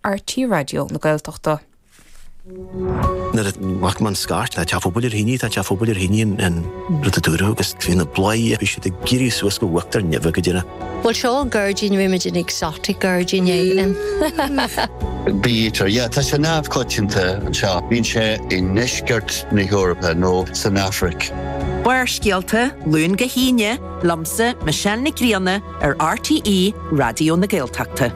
RTÉ Raidió na Gaeltachta. Nuair a ghlac mé an scairt, tá teach pobail ar thine, tá teach pobail ar thine an rud a dúradh agus bhí na bladhairí ag éirí suas go huachtar neimhe go deireadh. Bhuel seo an gairdín, bhímid in exotic gairdín éigin. Bítear, yeah, tá sé neamhchoitianta anseo. Bíonn sé i ndeisceart na hEorpa nó san Afraic. Barrscéalta, Luan go hAoine, liomsa, Michelle Nic Grianna, ar RTÉ Raidió na Gaeltachta.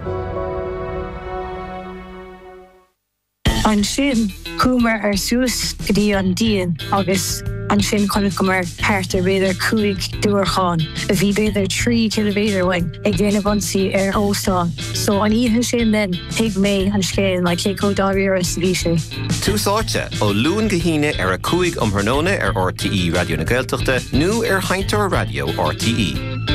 Ansin, chuamar ar suas go dtí an díon agus ansin chonaiceamar thart ar b'fhéidir cúig diúracán, a bhí b'fhéidir trí chiliméadar uainn, ag déanamh ionsaí ar óstán. So, an oíche sin then, thuig mé an scéal, like cé chomh dáiríre is a bhí sé. Tús Áite, ó Luan go hAoine ar a 5 um thráthnóna ar RTÉ Raidió na Gaeltachta nó ar sheinnteoir raidió RTÉ. Beimid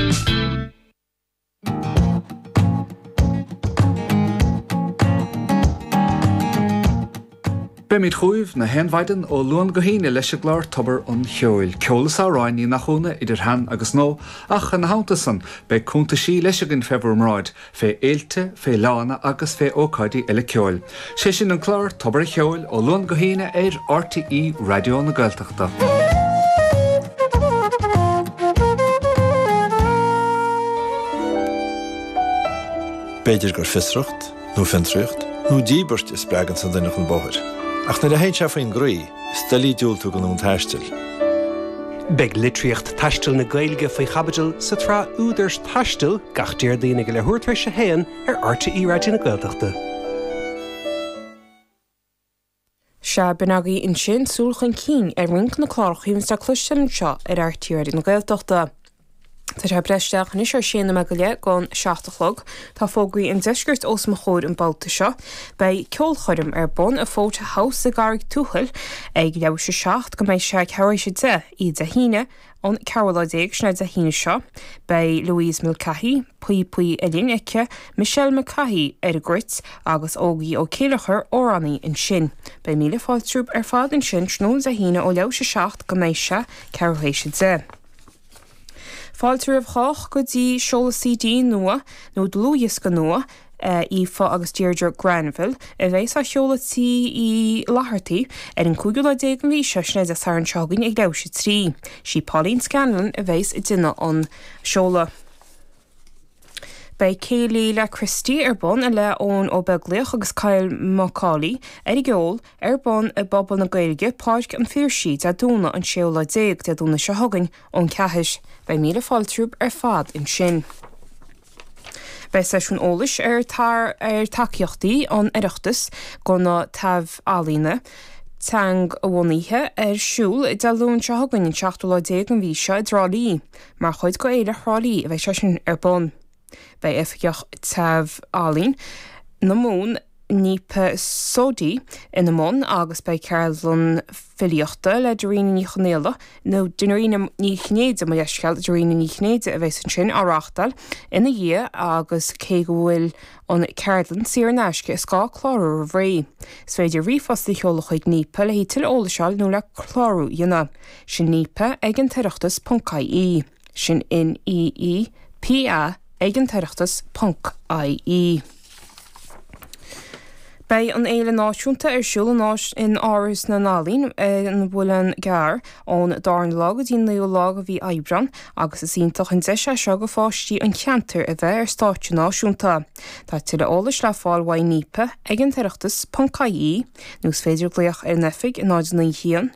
chugaibh na haon mhaidin ó Luan go hAoine leis an gclár Tobar an Cheoil, ceol is amhráin, ní nach ionadh, idir shean agus nua, ach ina theannta san, beidh cúntaisí leis againn fé bhur mbráid, fé fhéilte, fé fhleánna agus fé ócáidí eile ceoil. Sé sin an clár Tobar a' Cheoil ó Luan go hAoine ar RTÉ Raidió na Gaeltachta. B'fhéidir gur fiosracht, nó fiontraíocht, nó díbirt a spreaganns an duine chun bóthair, ach nuair a théann sé faoin gcroí, is doiligh diúltú don fhonn taistil. Beidh litríocht taistil na Gaeilge faoi chaibidil sa tsraith Údar Taistil gach Déardaoin ag a leathuair tar éis a haon ar RTÉ Raidió na Gaeltachta. Sea, b'in agaibh ansin súil chun cinn ar roinnt de na cláracha a bhíonns le cloisteáil anseo ar RTÉ Raidió na Gaeltachta. Tá sé ag breith isteach anois ar sé nóiméad go leith don seacht a chlog. Tá fógraí an deiscirt os mo chomhair an babhta seo. Beidh ceolchoirm ar bun i Fota House i gCarraig Thuathail ag leathuair théis a seacht go mbeidh sé ceathrú théis a deich oíche Dé hAoine an ceathrú lá déag sin é Dé hAoine seo. Beidh Louise Mulcahy, píopaí uillinn aici, Michelle Mulcahy ar an gcruit agus Ógie Ó Céilleachair, amhránaí, ansin. Beidh míle fáilte romhaibh ar fad ansin tráthnóna Dé hAoine ó leathuair théis a seacht go mbeidh sé ceathrú théis a deich. Fáilte roimh chách go dtí seoladh CD nua, nó dlúthdhiosca nua, Aoife agus Deirdre Granville, a bheas á sheoladh Tigh Uí Fhlaitheartaigh ar an 15ú lá den mhí seo, sin é Dé Sathairn seo chugainn ag leathuair théis a 3. Sí Pauline Scanlon a bheas ag déanamh an seoladh. Beidh Céilí le Christy ar bun i leith Eoin Ó Beaglaoich agus Kyle Macaulay, ar an gceol, ar bun i bPuball na Gaeilge, Páirc an Phiarsaigh, Dé Domhnaigh an 6ú lá déag, Dé Domhnaigh seo chugainn, ón ceathair. Beidh míle fáilte romhaibh ar fad ansin. Beidh seisiún eolais ar ar tacaíochtaí an Oireachtais go na taibh-ealaíona teangabhunaithe ar siúl Dé Luain seo chugainn, an seachtú lá déag den mhí seo, i dTrá Lí. Mar chuid de Fhéile Thrá Lí a bheidh sé sin ar bun. Beidh Oifigeach Taibh-ealaíon na Mumhan Neepa Sodhi ina mbun agus beidh ceardlann filíochta le Dairena Ní Chonaola, nó Dairena Ní Chinnéide, mo leithscéal, Dairena Ní Chinnéide a bheas ansin, á reáchtáil ina dhiaidh agus cé go bhfuil an ceardlann saor in aisce is gá clárú roimh ré. Is féidir ríomhphost a sheoladh chuig Neepa le haghaidh tuilleadh eolais a fháil nó le clárú a dhéanamh. Sin Neepa ag an tOireachtas ponc IE. Sin N E E P A ag an tOireachtas ponc IE. Beidh an fhéile náisiúnta ar siúl in áis in Áras na nEalaíon an Mhuileann gCearr ón dara lá go dtí an naoú lá de mhí Aibreán agus is iontach an deis é seo do pháistí an cheantair a bheith ar stáitse náisiúnta. Tá tuilleadh eolais le fáil uaidh Neepa ag an tOireachtas ponc IE nó is féidir glaoch ar an oifig 0 9 1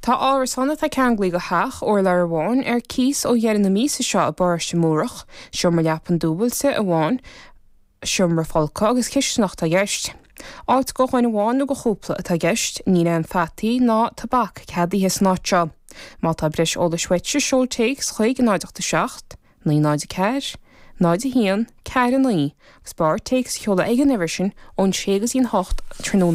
Tá árasán atá ceanglaithe de theach, urlár amháin, ar cíos ó dheireadh na míosa seo i bParóiste Múrach. Seomra leapan dúbailte amháin, seomra folctha agus cistineach atá i gceist. Áit do dhuine amháin nó do chúpla atá i gceist. Níl aon pheataí ná tobac ceadaithe san áit seo. Má tá breis eolais uait seol téacs chuig 0 8 7 9 0 4 0 1 4 9 agus b'fhearr téacs a sheoladh ag an uimhir sin ón 6 go dtí an 8 tráthnóna.